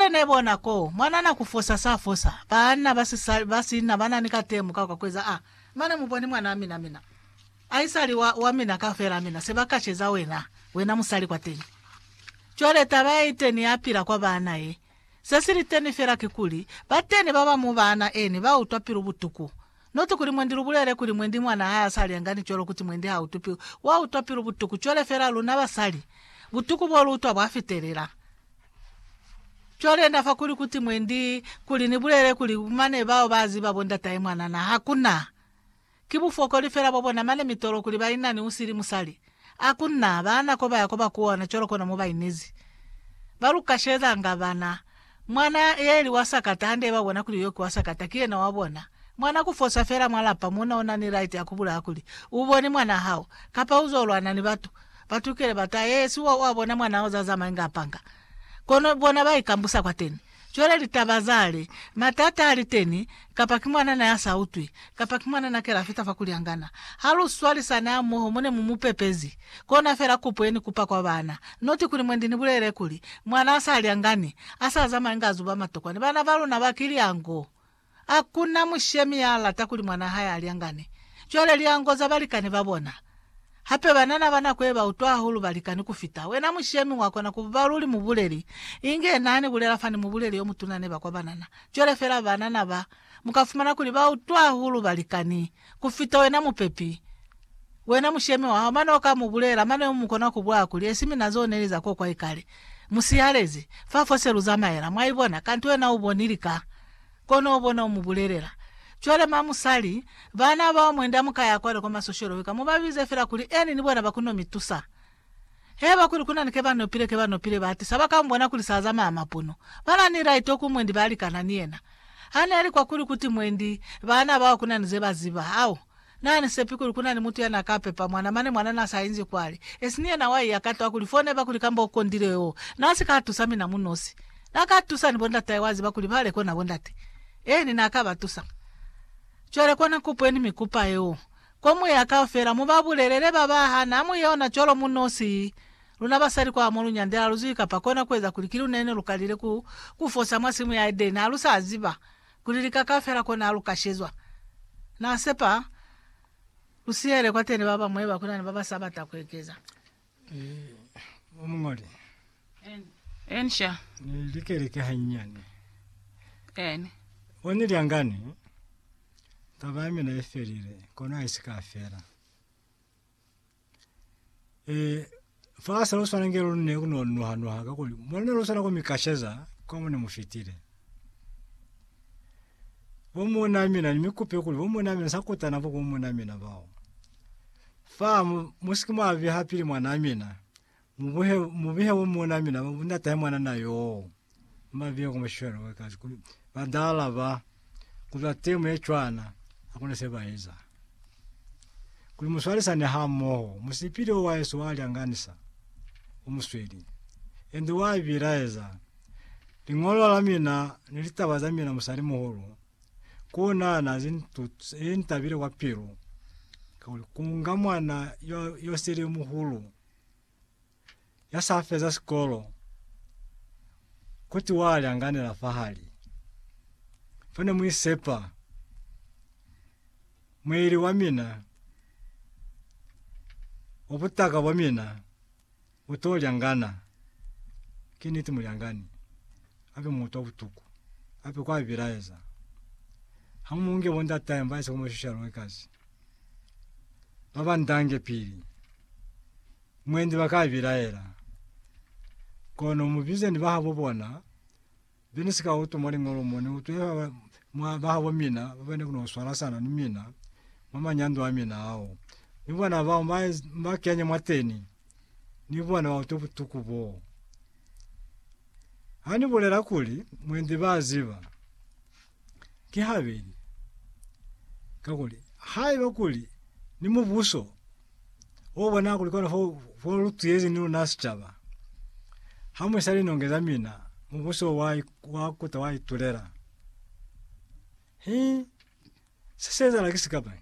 Ne bona ko mwanana ku fosa sa fosa. Baanna ba sisali ba sina ba na ni katemo ka kwa kueza a, mane mu bone mwanaa mina, mina aisali wa, wa mina kaufela, mina se ba kaceza wena, wena musali kwateni. Cwale taba ye iteni ya pila kwa baana ye. Se si liteni fela kikuli, bateni ba ba mwa baana eni ba utwa pilu butuku. Not kuli mwendi lu bulele kuli mwendi mwanaa ha sa lyanga ni cwalo kuti mwendi ha utwi pilu, wa utwa pilu butuku, cwale fela luna basali, butuku bo lu utwa bwa fitelela. Cwale na fa kuli kuti mwendi, kuli ni bulele kuli mane bao ba ziba bo ndatahe mwana na, ha ku na. Ki bufokoli fela bwa bona mane mitolo kuli ba ina ni usili musali. Ha ku na, ba na ko ba ya ko ba kuwana cwalo kona mo ba inezi. Ba lu kashelelanga bana. Mwana, ye ili wa sakata, hande ba bona kuli yo ki wa sakata, ki yena wa bona. Mwana ku fosa fela mwa lapa mona u na ni right ya ku bulaya kuli, U boni mwana hao, kapa u zo lwana ni batu. Batukile ba ta ye si wa bona mwana o za zamaye nga panga. Kono bona ba ikambusa kwateni. Cwale litaba za li, matata a li teni, kapa ki mwana na ya sa utwi, kapa ki mwana na kela fita fa kulyangana. Ha lu swalisani hamoho mo ne mu mu pepezi, kona fela kupo ye ni kupa kwa bana. Noti kuli mwendi ni bulelele kuli, mwana a sa lyangani, a sa zamaye nga zuba matokwani. Bana ba luna ba kilyango. Ha ku na mushemi ya lata kuli mwanaa hae a lyangane. Cwale lyango za balikani ba bona. Hape banana ba nako ye ba utwa hahulu balikani ku fita. Wena mushemi wa kona ku ba luli mubuleli, inge na ni bulela fani mubuleli yo mutuna neba kwa banana. Cwale fela banana ba, mu ka fumana kuli ba utwa hahulu balikani. kufita wena mupepi, wena mushemi wa hao, mane uka mu bulela, mane umu kona ku bwa kuli, Esi mina zo neli za kokwa ikale, mu sihalezi, fa fo se lu zamaela, mwa ibona, kanti wena u boni lika, kono u bona u mu bulelela. Cwale ma musali, bana bao mwende amu ka ya kwale kwa masosholo wika, mu ba bize fela kuli, Eni ni bona ba kuno mi tusa. Haiba kuli ku na ni kebanopile, kebanopile ba atisa ba ka mubona kuli sa zamaya mapono. Ba na ni laito ku mwendi ba likana ni yena. Ha ne li kwa kuli ku ti mwendi, baana bao ku na ni ze ba ziba. Au, na ni sepi kuli ku na ni mutu ya na ka pepa mwana, mane mwana na sa inzi kwale. Esi ni yena wa iya ka to a ku li foneba kuli kamba u kondile yoo. Na si ka tusa mina mu nosi. Na ka tusa ni bondatahe, wa ziba kuli ba le kona bondate. Eeni, na ka ba tusa. Cwale kona kupu ye ni mi kupa yeo. Kwa moya kaufela, mu ba bulelele ba ba hana mu yona cwalo mu nosi. Luna basali kwa mo lu nyandela lu zwi kapa kona ku eza kuli ki luna ne lu kalile ku, ku fosa mwa simu ya Edeni. Ha lu sa ziba kuli lika kaufela kona lu ka shezwa. Na sepa lu sihele kwateni ba bañwi ba kuna ni ba ba sa bata ku ekeza. Eh, Umungoli. Eni sha. Ni likeleke hanyane. Eni. Oni liangani. Taba ya mina ifelile. Kono haisika fela. Eh, fa sa uswana ngelo ne kuno nuha nuha kakuli. Mwana uswana kumikasheza kwa mune mufitile. bo muna mina ni mikupe kuli bo muna mina sa kutana bo ku muna mina bao. Fa mu- musiki mwa biha pili mwana mina, mu buhe mu bihe bo muna mina bo nda tahe mwana na yoo. Mba bihe ku mashwele wakazi kuli ba nda alaba kuli ba temu ye cwana, hakuna se ba eza. kuli muswalisane hamoho musipili wa Yesu walyanganisa umusweli ende wabilaeza ling'olo la mina ni litaba za mina musali muhulu kunana zintabile kwa pilu kunga mwana yosele muhulu ya sa feza sikolo kuti wa lyanganela fahali fo ne mu isepa mueli wa mina wa butaka bwa mina u to lyangana. Ki niti mulyangani hape mu utwa butuku hape kwa bilaeza. Ha mu nge bo ndatahe mba ise ku mo shusha lwe kasi. babandange pili mwendi bakaibilaela kono mubize ni bahabo bona bini sika utuma lingolo mone utwela mwa babo mina ubene kuno swala sana ni mina mama nyandwa wa mina hao ubona bao maezi makenya mwateni ni bona utu butuku bo. Ani bolela kuli mwendi baziba Ki habeli. Kakuli, haiba kuli ni mubuso o bona kuli kona fo, fo lu tuyezi ni luna sicaba, ha mu isa linonge za mina, mubuso wa, wa kuta wa itulela. Hi se se ezahala ki sikapa.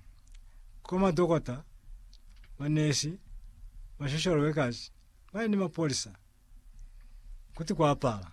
Ko madokota, manesi, ma social workers, ba ni mapolisa, kuti kwa pala.